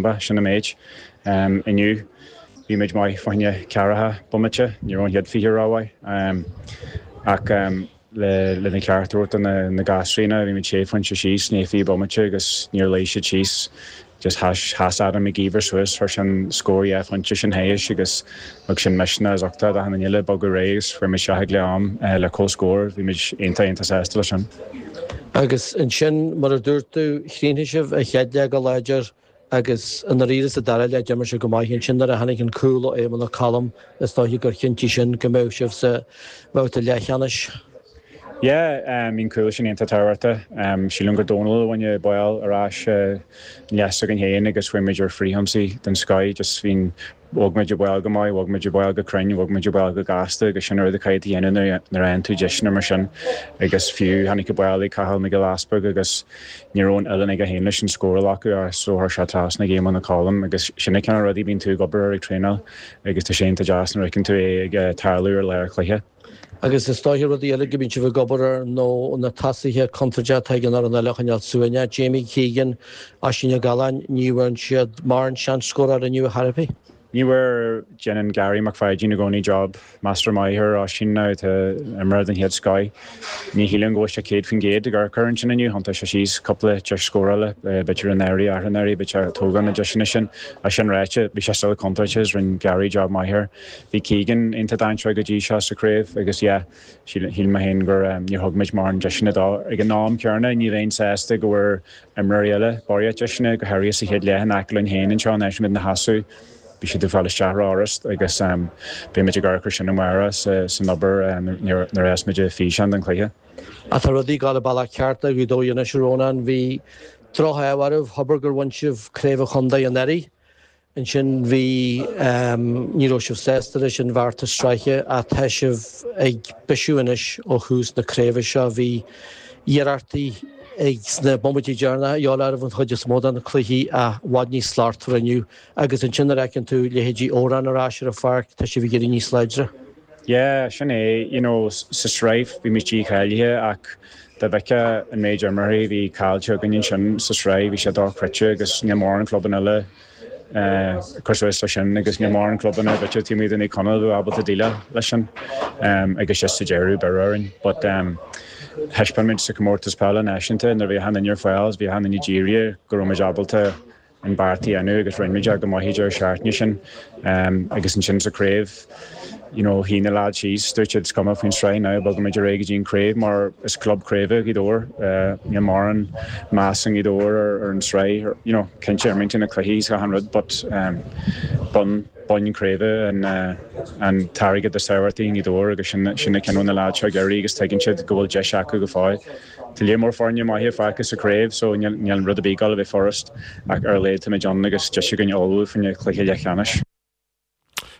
Ba sin an méid. Inniu, bhí muid maith fá choinne ceathracha bomaite, ní raibh an chéad fiche rómhaith, ach lena gceart a thabhairt do na gasúraí, bhí muid sé phointe síos, i ndiaidh fiche bomaite, agus níor luigh siad síos. Just sheas Adam Mac Íomhair suas, chuir sé an scór dhá phointe sin thairis, agus. Thug sin misneach is uchtach d'achan duine le bogadh ar aghaidh agus chuaigh muid isteach ag leath am le comhscór, bhí muid iontach iontach sásta leis sin. Agus ansin, mar a dúirt tú, chríochnaigh sibh an chéad leath go láidir agus i ndáiríre sa dara leath d'imir sibh go maith. Ansin nuair a tháinig an cúl ó Éamonn Ó Colm is dóiche gur chinntigh sin go mbeadh sibh sa mbabhta leathcheannais. Yeah, bhí an cúl sin iontach tábhachtach. Sílim gur Dónal a bhain an bál ar ais in leath s'againn féin agus chuaigh muid ar fhrithionsaí den scoith, just bhí an Bhog muid an bál go maith, bhog muid an bál go cruinn, bhog muid an bál go gasta agus sin an rud a chaithfidh tú a dhéanamh nuair a fhaigheann tú deiseanna mar sin agus fiú tháinig an bál ag Cathal Mac Giolla Easbuig agus ní raibh an uillinn aige féin leis an scóráil acu as so chuir sé trasna ag Éamonn Ó Colm agus sin na cineál rudaí a bhíonn tú ag obair air ag traenáil agus tá sé iontach deas nuair a fheiceann tú é ag tarlú ar lá an chluiche. Agus is dóiche rudaí eile go mbíonn sibh ag obair ar nó na tosaithe contae atá ag an fhoireann eile a choinneáil suaimhneach, Jamie Keegan, Oisín Ó Galláin, ní bhfuair siad mórán seans scóráil inniu a thairbhigh. Ní bhfuair déanann Garry Mac Pháidín i gcónaí job measartha maith ar Oisín atá ina imreoir den chéad scoith. Ní shílim go bhfuil sé 100% ag urchar ansin inniu, thiontaigh sé síos cúpla deis scórála, b'fhéidir ar a náirí athranáirí, b'fhéidir a tógáil na deiseanna sin. É sin ráite, bhí sé still contúirteach is rinne Garry job maith air. Bhí Keegan iontach dainséarach go dtí seo sa chraobh agus yeah, shíl mé féin gur, níor thug muid mórán deiseanna dó. Ag an am céanna, ní bheinn sásta go bhfuair imreoirí eile barraíocht deiseanna, go háirithe sa chéad leath in aice linn féin anseo in áit a bhfuil muid inár seasamh. Bhí siad ag fáil isteach rófhurast agus beidh muid ag amharc ar sin amárach san obair nuair a bheas muid ag físeán den chluiche. Tá rudaí ag gabháil an bealach ceart ag Gaoth Dobhair anois, a Rónáin. Bhí droch-ádh oraibh, thobair gur bhain sibh craobh an chontae anuraidh. ansin bhí Ní raibh sibh sásta leis an bhfeachtas sraithe ach tá sibh ag bisiú anois ó thús na craoibhe seo. Bhí deacrachtaí agaibh sna bomaití deireanacha gheall arbh an chuid is mó de na cluichí i bhfad níos slachtmhar inniu agus ansin nuair a fheiceann tú leithéidí Odhrán ar ais ar an pháirc tá sibh ag éirí níos láidre. Yeah, sin é. You know, sa sraith bhí muid dícháilithe ach dá bhfeictheá an méid imreoirí a bhí caillte againn ansin sa sraith, bhí sé dochreidte agus níl mórán clubanna eile ag cur suas leis sin agus níl mórán clubanna b'fhéidir taobh amuigh de Naomh Conaill a bheadh ábalta déileáil leis sin agus just sa deireadh beireadh orainn but thaispeáin muid sa Chomórtas Peile Náisiúnta nuair a bhí achan duine ar fáil is bhí achan duine dírithe go raibh muid ábalta an beart a dhéanamh agus rinne muid é go maith i dtaobh na sraithe sin agus ansin sa craobh you know shuigh na lads síos dúirt siad is cuma faoin sraith now bogaimid ar aghaidh go dtí an craobh mar is club craoibhe Gaoth Dobhair níl mórán meas i nGaoth Dobhair ar ar an sraith you know cinnte imríonn muid na cluichí is achan rud but bonn boinn craoibhe an an t-airgead is tábhachtaí i nGaoth Dobhair agus sin sin an cineál na lads seo ag iarraidh agus tuigeann siad go bhfuil deis acu go fóill. Tá líon mór foirne maithe fágtha sa chraobh so níl an rud ag dul a bheith furast ach ar a laghad táimid ann agus deis againn ullmhú fá choinne cluiche leathcheannais.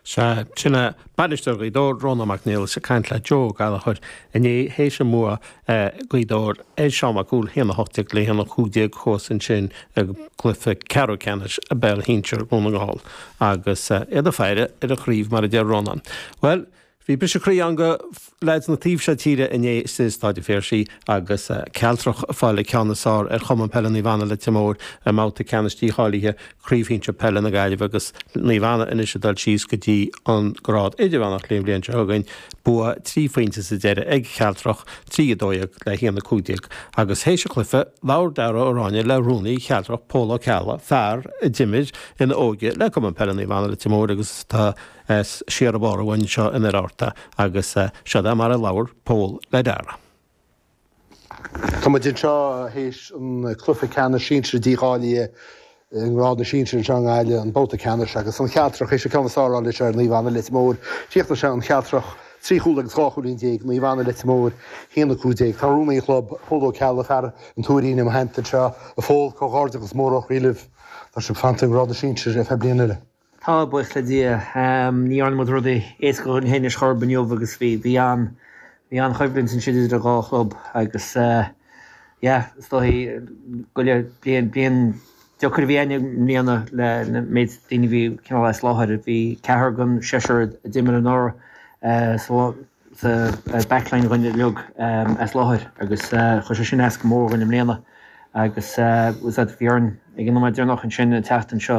Sea, sin é. Bainisteoir Ghaoth Dobhair, Rónán Mac Niallais ag caint le Joe Ó Gallachóir inné théis an bhua ag Gaoth Dobhair ar Sheán Mac Cumhaill 1 18 le 1 15 thuas ansin i gcluiche ceathrú ceannais Pheil Shinsir Dhún na nGall agus iad ag faire ar an chraobh mar a deir Rónán. Bhuel, Bhí briseadh croí ann do leaids an taobh seo tíre inné i Stáid an Phiarsaigh agus Cealtrach ag fáil an ceann is fearr ar Chumann Peile Naomh Anna Leitir Móir i mbabhta ceannais dícháilithe Chraobh Shinsir Peile na Gaillimhe agus Naomh Anna anois ag dul síos go dtí an grád Idirmheánach le haghaidh an bhliain seo chugainn. Bua trí phointe sa deireadh ag Cealtrach, 3-12 le 1-15, agus théis an chluiche labhair Darragh Ó Ráinne le Rúnaí Chealtrach Pól Ó Ceallaigh, fear a d'imir ina óige le Cumann Peile Naomh Anna Leitir Móir agus atá as iarthar bhaile Uí Fhiacháin in Oirearta agus seod é mar a labhair Pól le Darragh. Tá muid anseo théis an cluiche ceannais sinsir dícháilithe i ngrád na sinsir anseo i nGaillimh, an babhta ceannais agus an Chealtrach théis an ceann is fearr a fháil ar Naomh Anna Leitir Móir. Chríochnaigh sé an Chealtrach trí chúl agus dhá chúilín déag, Naomh Anna Leitir Móir 1, 15. Tá rúnaí an chlub, Pól Ó Ceallaigh, fear an Tuairín i mo theannta anseo. A Phól, comhghairdeachas mór ó chroí libh. Tá sibh fanta i ngrád na sinsir ar feadh bliain eile. Tá, buíochas le Dia. Ní dhearna muid rudaí éasca dhúinn féin ar aon chor inniu agus bhí bhí an-choimhlint ansin idir an dhá chlub agus yeah, is dóigh go raibh, bliain, bliain deacair a bhí againn i mbliana le na méid daoine a bhí cineál as láthair. Bhí ceathrar den seisear a d'imir anuraidh sa sa backline againn uilig as láthair agus chuir sé sin as go mór againn i mbliana agus bhí orainn ag an nóiméad deireanach ansin an tseachtain seo,